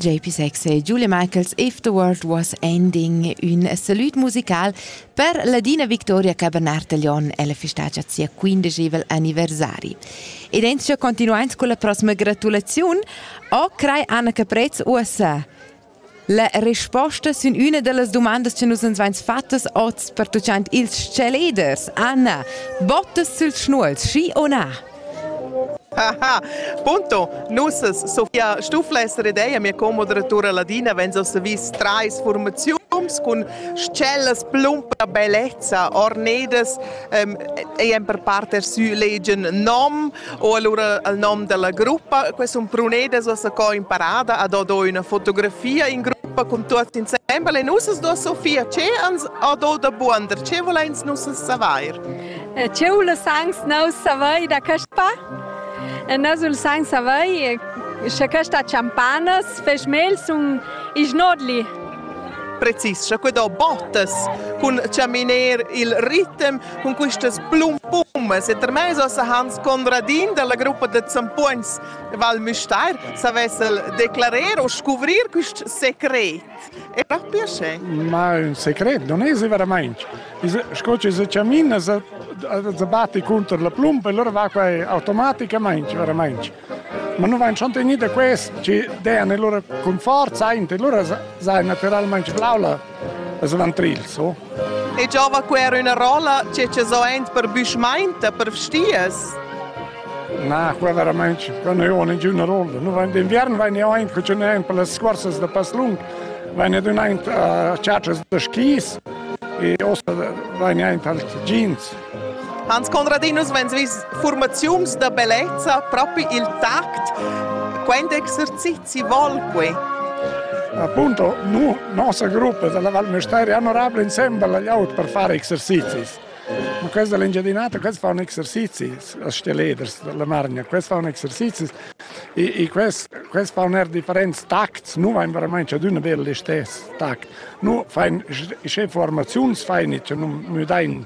JP6 e Julie Michaels If the World Was Ending, un salut musical per Ladina Victoria Cabernet-Taglion e la festagia sia quindegevel anniversari. Ed entschia continuant con la prossima gratulaziun, o crei Anna Caprez USA. La resposta sin üna da las dumandas che nus ans vains fattas hoz pertuchant ils chaleders. Anna, bottas süls schnuols, schi o na? Aha. Punto, nus Sofia Stufles redeia mia co-moderatura Ladina venza os vis trais formaziuns cun tschellas plum per bellezza, ornedas, ähm, e per parter sü legen nom, O allura al nom della gruppa, questo è un brunede che ho imparato, ad do una fotografia in gruppa con tutti insieme e nus do Sofia, ce ans do da buander, ce volens nus saver? Eh, ce voles ans nus saver da questa? Eh, nus vols ans saver se questa champanas fes mels un ignodli. Precis, che do bottas cun chaminar il ritmo Cun questas blumpummas e termess ossa Hans Conradin dalla gruppa da Zampogns Val Müstair savess el declarer o scuvrir quist secret. È per piacere. Ma un secret non è veramente. Sco ci se camina se batti contro la plumpa e allora va qua automaticamente veramente. Ma nu vain schon tegnü da quest chi dean e lura cun forza aint e lura saja natüralmaing blau la las lantrils, o? E giova que era üna rolla che che so aint per büschmainta, per vstias? Na, qua veramente, qua non ho ninguna rolla. Nu vain d'inviern vain io aint cun un aint per las scursas da passlung, vain ed un aint a ciacias da skis e ossa vain io aint als jeans. Hans Conradinus vegn vis formaziuns da bellezza propi il tact. Quant exercizi vol quei? Appunto, nu, nossa gruppa della Val Mesteri hanno rabla insembel agli aut per fare exercizis. Ma questa è l'engiadinata, questi fanno exercizi, as stelleders della Margna, questi fanno exercizi e, e questi, questi fanno er differenti tacts, nu vain veramente ad una bella stess tact. nu fain sche formaziuns fain e nun müdain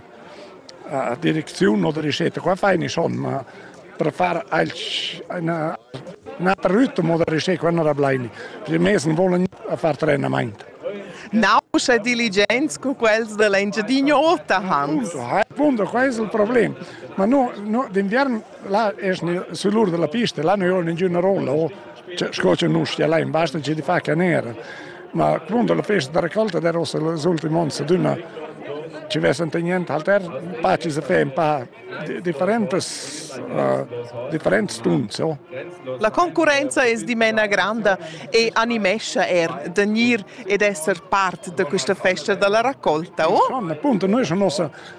a direcziun o da ricetta. Qua fain i schon, ma per far alch üna na per rütm o da ricetta qua non rablaini. I mez nu volan far trenamaint. Nauscha diligents cu quels da l'Engiadin'Ota han. Appunto, qua es il problem. Ma no, no d'inviern Là es sü l'ur della pista, là non joga ninguna rolla, o sco che non stia là in basta c'è di fa canera. Ma quando la festa da raccolta der ossa les ultimi ons d'una ci vesente niente alter, pa ci se fe un pa differentes uh, differentes tunze. Oh. La concurenza es dimena granda e animescia er de gnir ed esser part de questa festa della raccolta, oh? Son, appunto, noi sono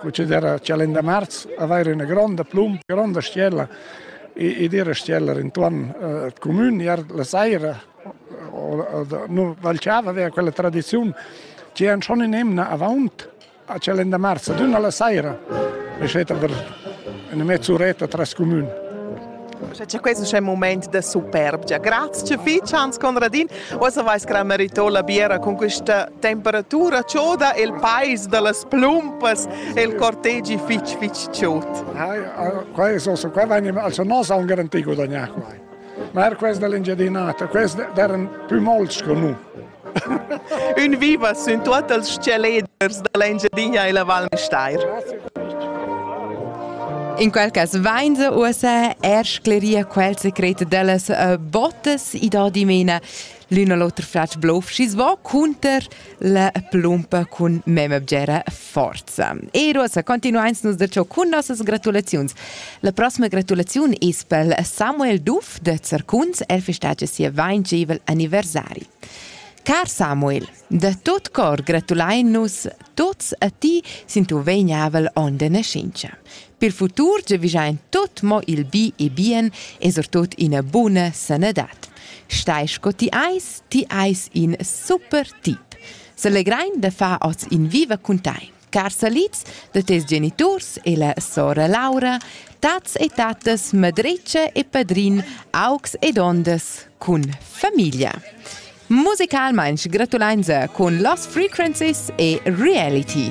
proceder a Chalenda Marz, avair üna gronda plum, gronda stiella ed ir a stiella intuorn al cumün, iar la saira nu valciava vea quella tradiziun che han schon in emna avaunt a Chalenda Marz, ad üna la saira, e schet aber üna mezz'uretta tras cumün. Sche cha quest es ün mumaint da superbgia. Grazcha fich Hans Conradin. Uossa vais cra merito la biera con questa temperatura choda e il pais da las plumpas e il cortegi fich fich chod. Qua es also qua vegnim also nos han garanti gudagnà qua. Ma er quest dell'Engiadinata, quest d'eran pü mols co nu. Ün viva sün tuot els tschelleders da l'Engiadina e la Val Müstair. In quel cas vain se uossa er scleria quel secret dellas uh, botas i da dimena l'un a l'oter fratsch blov schi va cunter la plumpa cun mem abgera forza. E uossa continuains nus da ciò cun nossas gratulaziuns. La prossima gratulaziun es pel Samuel Duff da Zercuns, el festagia sia 25 anniversari. Car Samuel, da tot cor gratulain nus tots a ti sin tuo vegnavel on de nascenza. Per futur giavigiain tot mo il bi e bien e sortot ina buna sanadad. Stai sco ti eis, ti eis in super tip. Selegrein da far oz in viva cun tei. Car salids da tes geniturs e la sora Laura, tats e tatas Madrece e Padrin, augs ed ondas cun famiglia. Musicalmain gratulein cun Lost Frequencies e Reality.